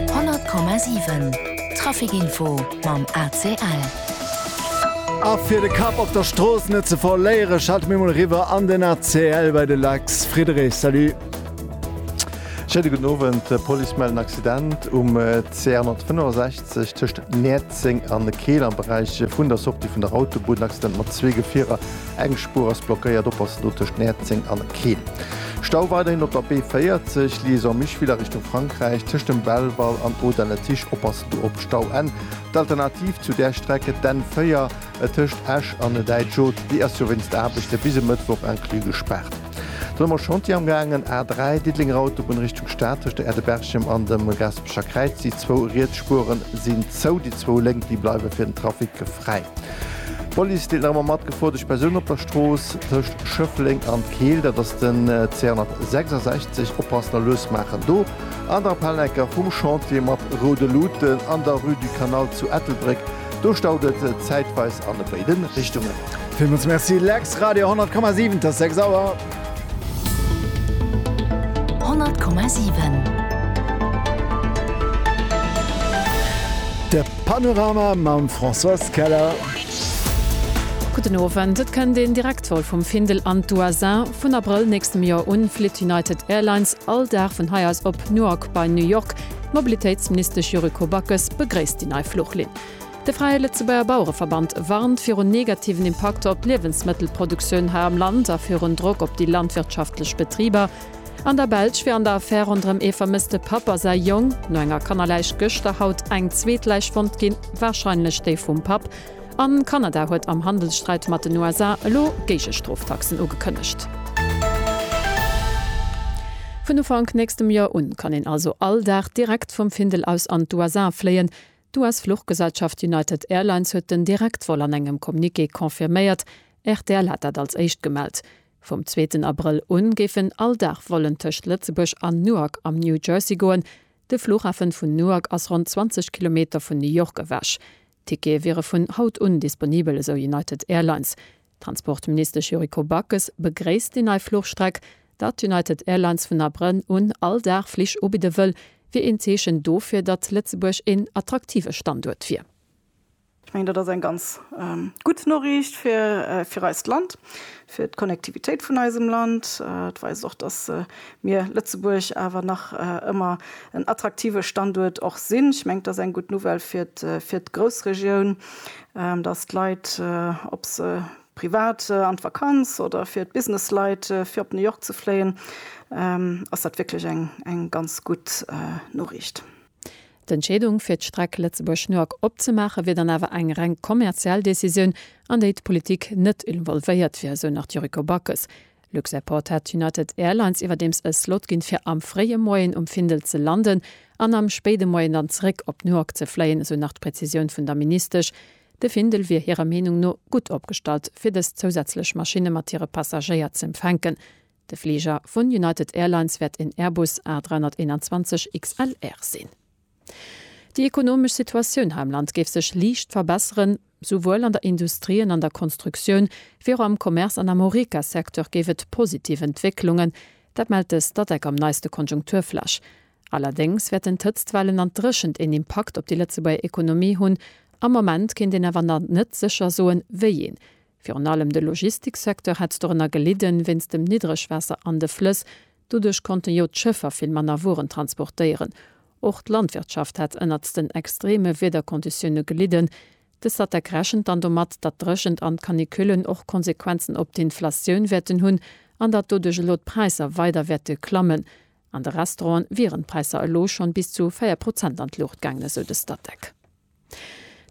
100,7 Trafic info mam ACL. A fir de Kapp op der Strooss net ze verléieren, schalte mir mol eriwwer an den ACL bei de Lex Friederich. Salut. Schéine gudden Owend. D'Police mellt en Accident um CR 165 tëscht Näerzeng an Keel am Beräich vun der Sortie vun der Autobunn. Accident mat zwee Gefierer. Eng Spuer ass blockéiert, oppassen do tëscht Näerzeng an Keel. Stau weiderhin op der B40, Liaison Micheville a Richtung Frankräich, tëscht dem Belval an Audun-le-Tiche, oppassen do op Stau. N, D'Alternativ zu där Streck, d'N4, et tëscht Esch an Däitsch-Oth, déi ass jo wéinst Aarbechte bis e Mëttwoch inclus gespaart. Dann hu mer Chantier amgaangen, A3, Diddelenger Autobunn Richtung Stad, tëscht der Aire de Berchem an dem Gaspecher Kräiz, déi zwou riets Spuere sinn zou, déi zwou lénk, déi bleiwe fir den Trafic fräi. D'Police deelt nach ëmmer mat, gefuerdegt Persounen op der Strooss tëscht Schëffleng an Keel, dat ass den C166, oppassen a lues maachen. Do an der Palecker vum Chantier mat roude Luuten an der Rue du Canal zu Ettelbréck, do staut et zäitweis an béide Richtungen. Villmols Merci Lex, Radio 100,7, t'ass 6 Auer. 100,7. De Panorama mam Françoise Keller. Gudden Owend. Et kënnt een Direktvol vum Findel an d'USA. Vun Abrëll nächstem Joer un flitt United Airlines all Dag vun hei aus op Newark bei New York. D'Mobilitéitsministesch Yuriko Backes begréisst déi nei Fluchlinn. De Fräie Lëtzebuerger Bauereverband warnt virun negativen Impakter op d'Liewensmëttelproduktioun hei am Land a virun Drock op déi landwirtschaftlech Betriber an der Belsch fir an der Affär ronderëm ee vermësste Papp a säi Jong no enger Kannerläich gëschter haut eng zweet Läich fonnt ginn, warscheinlech déi vum Papp. An Kanada huet am Handelssträit mat den USA elo Géigestroftaxen ugekënnegt. Vun Ufank nächstem Joer un kann een also all Dag direkt vum Findel aus an d'USA fléien. D'US-Fluchgesellschaft United Airlines huet den Direktvol an engem Communiqué confirméiert, rtl hat dat als éischt gemellt. Vum zweeten Abrëll u géifen all Dag Vollen tëscht Lëtzebuerg an Newark am New Jersey goen. De Flughafen vun Newark ass ronn 20 Kilometer vun New York ewech. Tickete wiere vun haut un disponibel, esou United Airlines. D'Transportministesch Yuriko Backes begréisst déi nei Fluchstreck. Datt United Airlines vun Abrënn un all Dag Flich ubidde wëll, wier een Zeechen dofir, datt Lëtzebuerg een attraktive Standuert wier. Ech mengen, dat ass eng ganz gutt Noriicht fir eist Land, fir d'Connectivitéit vun eisem Land. Et weist och, datt mir Lëtzebuerg awer nach ëmmer en attraktive Standuert och sinn. Ech mengen, et ass eng gutt Nouvelle fir d'Groussregioun. dass d'Leit, ob se privat an d'Vakanz oder fir d'Businessleit, fir op New York ze fléien, ass dat wierklech eng ganz gutt Noriicht. D'Entscheedung, fir d'Streck Lëtzebuerg-New York opzemaachen, wier dann awer eng reng kommerziell Decisioun, an déi d'Politik net involvéiert wier, esou nach d'Yuriko Backes. Luxairport hat United Airlines iwwerdeems e Slot ginn, fir am fréie Moien um Findel ze landen an am spéide Moien dann zeréck op Newark ze fléien, esou nach d'Prezisioun vun der Ministesch. De Findel wier hirer Meenung no gutt opgestallt, fir dës zousätzlech Maschinne mat hire Passagéier z'empfänken. De Fliger vun United Airlines wäert een Airbus A321 XLR sinn. Déi ekonomesch Situatioun hei am Land géif sech liicht verbesseren. Souwuel an der Industrie an an der Konstruktioun, wéi och am Commerce an am Horeca-Secteur géif et positiv Entwécklungen. Dat mellt de Statec am neiste Konjunkturflash. Allerdéngs wäerten d'Hëtztwellen an d'Dréchent een Impakt op déi Lëtzebuerger Ekonomie hunn. Am Moment kéint een awer nach net sécher soen, wéi een. Virun allem de Logistiksecteur hätt dorënner gelidden, wéinst dem Niddregwaasser an de Flëss. Doduerch konnten jo d'Schëffer vill manner Wueren transportéieren. Och d'Landwirtschaft hätt ënnert den extreme Wiederkonditioune gelidden. De Statec rechent dann domat, datt d'Dréchent an d'Canicullen och Konsequenzen op d'Inflatioun wäerten hunn an datt doduerch elo d'Präisser weider wäerte klammen. An de Restauranten wieren d'Präisser elo schonn bis zu 4 Prozent an d'Luucht gaangen, esou de Statec.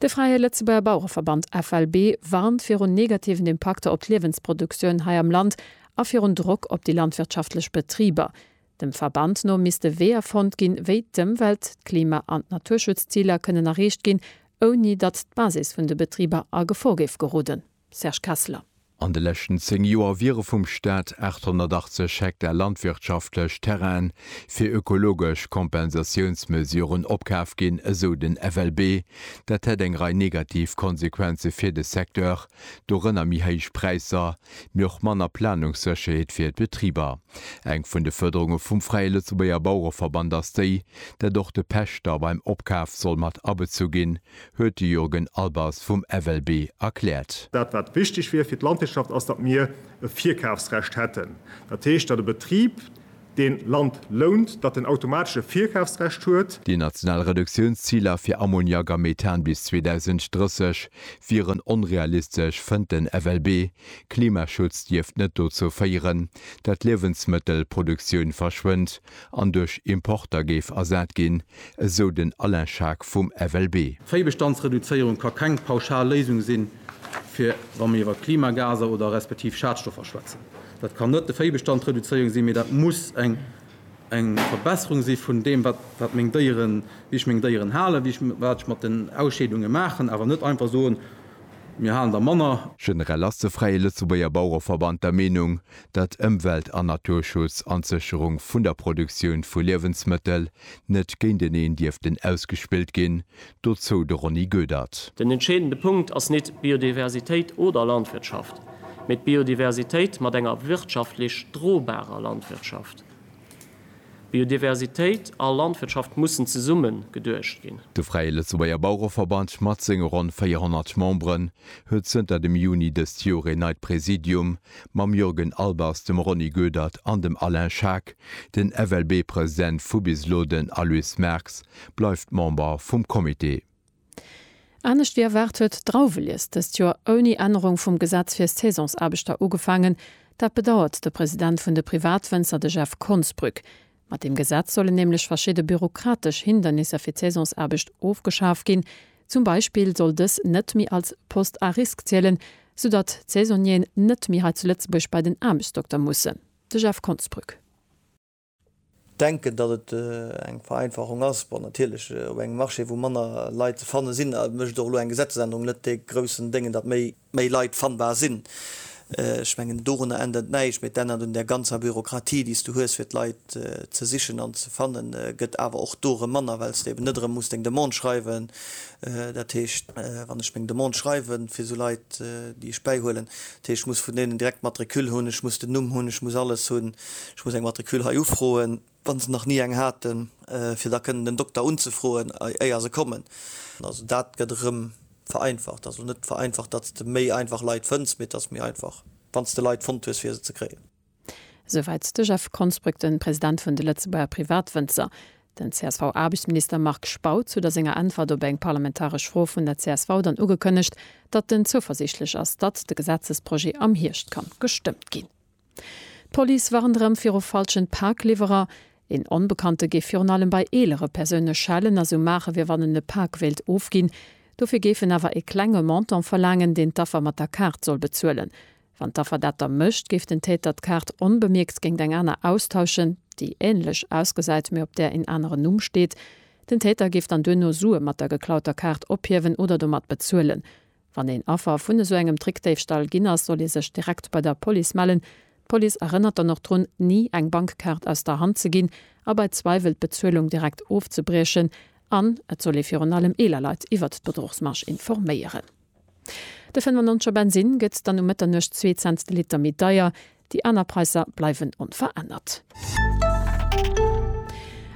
De Fräie Lëtzebuerger Bauereverband, FLB, warnt virun negativen Impakter op d'Liewensproduktioun hei am Land a virun Drock op déi landwirtschaftlech Betriber. Dem Verband no misste Weeër fonnt ginn, wéi d'Ëmwelt-, d'Klima an d'Naturschutzziler kënnen erreecht ginn, ouni datt d'Basis vun de Betriber a Gefor géif geroden. Serge Kessler. An de leschten 10 Joer wiere vum Staat 880 Hektar landwirtschaftlech Terrainen fir ökologesch Kompensatiounsmesuren opkaf ginn, esou den FLB. Dat hätt eng Rei negativ Konsequenze fir de Secteur, dorënner méi héich Präisser, mee och manner Planungssécherheet fir d'Betriber. Eng vun de Fuerderunge vum Fräie Lëtzebuerger Bauereverband ass déi, dat och de Pächter beim Opkaf soll mat abezu ginn, huet de Jurgen Albers vum FLB erkläert. Dat wat wichteg wier fir d'Landwirtschaft ass, datt mir e Virkafsrecht hätten. Dat heescht, datt e Betrib deen Land lount, datt en automatesch e Virkafsrecht huet. Déi national Reduktiounsziler fir Ammoniak a Methan bis 2030 wieren onrealistesch, fënnt den FLB. Klimaschutz dierft net dozou féieren, datt d'Liewensmëttelproduktioun verschwënnt, an duerch Importer géif ersat ginn, esou den Alain Schaack vum FLB. D'Véibestandsreduzéierung ka keng pauschal Léisung sinn, fir wa mir iwwer Klimagaser oder respektiv Schadstoffer schwätzen. Dat kann net de Véibestand reduzéierung sinn, mee dat muss eng Verbesserung si vun deem, wat meng Déieren, wéi ech meng Déieren halen, wéi ech, wat ech mat den Ausscheedunge maachen, awer net einfach soen, mir halen der manner. Generell ass de Fräie Lëtzebuerger Bauereverband der Meenung, datt Ëmwelt an Naturschutz an d'Sécherung vun der Produktioun vu Liewensmëttel net géinteneen dierften ausgespillt ginn, dozou de Ronny Goedert. Den entscheedende Punkt ass nit Biodiversitéit oder Landwirtschaft, mee d'Biodiversitéit mat enger wirtschaftlech drobarer Landwirtschaft. Biodiversitéit a Landwirtschaft mussen zesummen geduecht ginn. De Fräie Lëtzebuerger Bauereverband mat senge ronn 400 Memberen huet zënter dem Juni dëst Joer een neit Präsidium, mam Jürgen Albers, dem Ronny Goedert an dem Alain Schaack. Den FLB-President vu bis elo, den Aloyse Merx, bleift Member vum Comité. Anescht wéi erwaart huet d'Drauwelies dëst Joer ouni Ännerung vum Gesetz fir Saisonsaarbechter ugefaangen. Dat bedauert de President vun de Privatwënzer, de Jeff Konsbrück. Mat deem Gesetz sollen nämlech verschidde bürokratesch Hindernisser fir d'Saisonsaarbecht ofgeschaf ginn. Zum Beispill soll dës net méi als Poste à risque zielen, sou datt d'Saisonnieren net méi hei zu Lëtzebuerg bei den Aarbechtsdokter mussen. De Jeff Konsbrück. Denken, datt et eng Vereinfachung ass. Bon, natierlech, op engem Marché, wou manner Leit ze fanne sinn, mécht och elo eng Gesetzesännerung net dee groussen Déngen, datt méi méi Leit fannbar sinn. Ech mengen, dorunner ännert näischt, mee et ännert un där ganzer Bürokratie, déi s du hues, fir d'Leit ze sichen an ze fannen, gëtt awer och do erëm manner, well s de eben net erëm muss deng Demande schreiwen. Dat heescht, wann ech meng Demande schreiwe fir esou Leit, déi ech bäihuelen, dat heescht, ech muss vun deenen direkt d'Matricule hunn, ech muss den Numm hunn, ech muss alles hunn. Ech muss eng Matricule hei ufroen, wann se nach ni eng haten, fir da kënnen den Dokter unzefroen éier se kommen. Also dat gëtt erëm vereinfacht, also net vereinfacht datt s de méi einfach Leit fënns, mee et ass méi einfach wann s de Leit fonnt hues fir se ze kréien. Souwäit de Jeff Konsbrück, de President vun de Lëtzebuerger Privatwënzer. Den CSV-Aarbechtsminister Marc Spautz huet a senger Äntwert op eng parlamentaresch Fro vun der csv dann ugekënnegt, datt en zouversiichtlech ass, datt de Gesetzesprojet am Hierscht ka gestëmmt ginn. D'Police warnt erëm viru falschen Pakliwwerer. Een Onbekannte géif virun allem bei eelere Persoune schellen a sou maachen, wéi wann en e Pak wéilt ofginn. Dofir géif en awer e klenge Montant verlaangen, deen d'Affer mat der Kaart soll bezuelen. Wann d'Affer dat da mécht, géif den Täter d'Kaart onbemierkt géingt eng aner austauschen, déi änlech ausgesäit, mee op där een aneren Numm steet. Den Täter géif dann duerno Sue mat der geklauter Kaart ophiewen oder domat bezuelen. Wann een Affer vun esou engem Trickdéifstall ginn ass, soll ee sech direkt bei der Police mellen. D'Police erënnert dann och drun, ni eng Bankkaart aus der Hand ze ginn a bei Zweiwel d'Bezuelung direkt ofzebriechen. An et soll ee virun allem eeler Leit iwwert d'Bedruchsmarge informéieren. De 95 er Bensinn gëtt dann um Mëtternuecht zwee Cents de Liter méi deier. Déi aner Präisser bleiwen onverännert.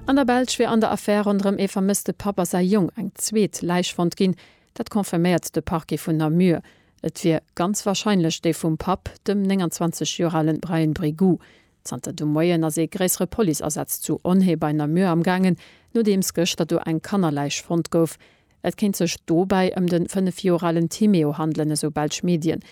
An der Belsch wier an der Affär ronderëm ee vermësste Papp a säi Jong eng zweet Läich fonnt ginn. Dat confirméiert de Parquet vun Namur. Et wier ganz warscheinlech déi vum Papp, dem 29 Joer ale Brian Brégou. Zanter de Moien ass ee gréissere Policeasaz zu Onhé bei Namur amgaangen, nodeems gëschter do eng Kannerläich fonnt gouf. Et kéint sech dobäi ëm de 5 Joer alen Timéo handelen, esou belsch Medien.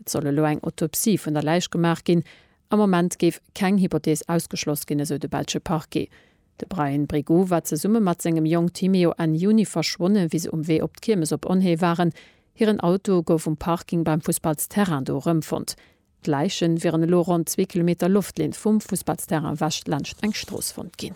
Et soll elo eng Autopsie vun der Läich gemaach ginn. Am Moment géif keng Hypothees ausgeschloss ginn, esou de belsche Parquet. De Bryan Brigoux war zesumme mat sengem Jong Timeo Enn Juni verschwonnen, wéi se um Wee op d'Kiermes op Onhée waren. Hiren Auto gouf um Parking beim Fussballsterrain do erëmfonnt. D'Läichen wieren elo ronn zwee Kilometer Loftlinn vum Fussballsterrain ewech laanscht eng Strooss fonnt ginn.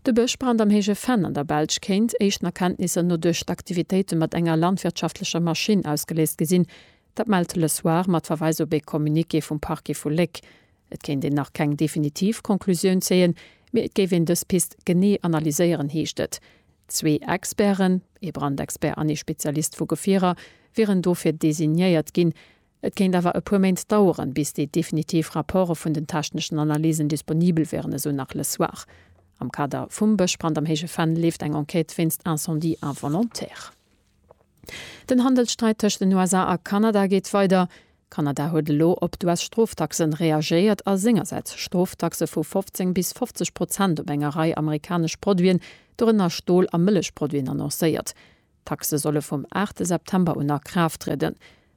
De Bëschbrand am Héije Venn an der Belsch kéint, éischten Erkenntnisser no, duerch d'Aktivitéite mat enger landwirtschaftlecher Maschinn ausgeléist gi sinn. Dat mellt Le Soir mat Verweis op ee Communiqué vum Parquet vu Léck. Et kéint een nach keng definitiv Conclusioun zéien, mee et géif een dës Pist genee analyséieren, heescht et. Zwee Experten, ee Brandexpert an ee Spezialist vu Gefierer, wieren dofir designéiert ginn. Et kéint awer e puer Méint daueren, bis déi definitiv Rapporte vun den techneschen Analysen disponibel wieren, esou nach Le Soir. Am Kader vum Bëschbrand am Héije Venn leeft eng Enquête wéinst Incendie involontaire. Den Handelssträit tëscht den USA a Kanada geet weider. Kanada huet elo op d'US-Stroftaxen reagéiert a sengersäits Stroftaxe vu 15 bis 50 Prozent op enger Rei amerikanesch Produiten, dorënner Stol a Mëllechproduiten annoncéiert. D'Taxe solle vum 8 September un a Kraaft trieden.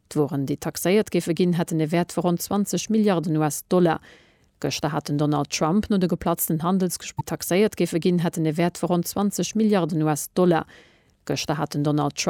D'Wueren, déi taxéiert géife ginn, hätten e Wäert vu ronn 20 Milliarden US-Dollar. Gëschter hat den Donald Trump no de geplatzten Handelsgespr. Taxéiert géife ginn, hätten e Wäert vu ronn 20 Milliarden US-Dollar. Gëschter hat den Donald Trump.